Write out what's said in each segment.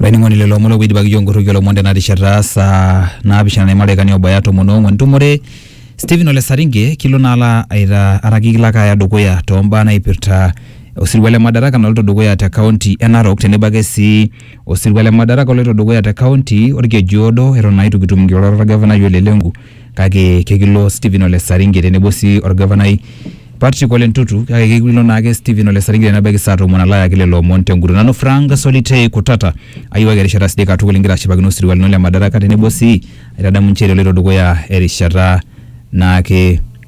olainining'oni lelo omon oidipaki iyiook inkorroki olomon tena rishata saa naapishana naima ildaikani oobaya tomon oong'uan nitumore Stephen Ole Saringe kilo naa alo aita araki kilo ake aya dukuya toombaa naipirta osirua le Madaraka naloito dukuya te kaunti e Narok tenebo ake sii osirua le Madaraka oloito dukuya te kaunti orkeju oodo eton naa itu kitum inkirorot orgavanai Ole Lenku. kake kekilo Stephen Ole Saringe tenebo sii orgavanai Patrick Ole Ntutu kake kekilo naake Stephen Ole Saringe tenebaiki saa tomon alo ayaki lelo omon tenguton. Nanu Frank Solitei Kutata ayiewaki erishata sidai katukul ingira ashipakino osirua lino le Madaraka tenebo sii aitadamu nchere eloito dukuya erishata naake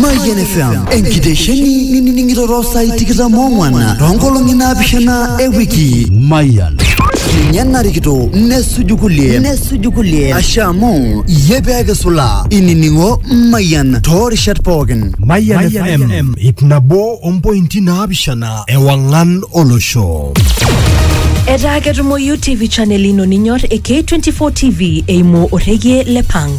Mayian FM enkitesheni nining'iroro saai tikitam ong'wan toonkolong'i naapishana e wiki. Mayian. Ninye narikito nesuju kulie nesuju kulie ashe amu iyie pee kisula inining'o Mayian toorishat pookin. Mayian FM ip nabo ompointi naapishana ewang'an olosho. Etaa ketumoyu TV channel ino ninyor e K24 TV eimu orrekie le Pang.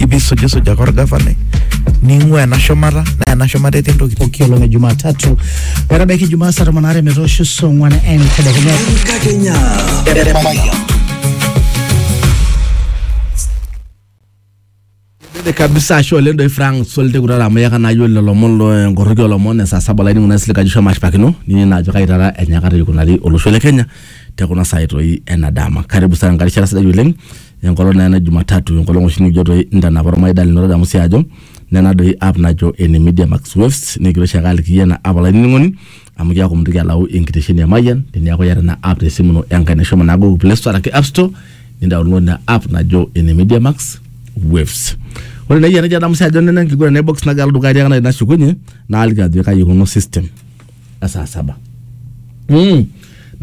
ipi sujisuja ake orgavanai ning'ua ena shumata naa ena shumata etii entoki pooki olong e Jumatatu metabaiki Jumaa saa tomon aare metoosho saa ong'wan entedekenya. Enkakenya. Dede kabisa ashe oleng doi Frank Solte kutata amu yaka nayiolo lelo omon lo enkoroki olomon esaa saba laini kuna sile kaji shomo ashipakino nini naajo kai taata enyakata ikunari olosho le Kenya te kuna saai toi ena dama. Karibu sana nkarishara sidai oleng enkolong naa ena Jumatatu enkolong oshi nikijo toi intanapa ormaida lino tadamu sii ajo nena doi app najo ene Media Max Waves nikigira oshiake aliki iyie ena app olainining'oni amu kiaku mintoki alau enkitesheni e Mayian teniaku iyata ina app tesimu ino enkaina shomo naa Google Play Store araki App Store nindaunlod ina app najo ene Media Max Waves. Ore naa iyie enajo adamu sii ajo nena enkiguran e box nagira alo dukuya tiakata nashukunye naaliki ajo kai ikununo system e saa saba. Mm.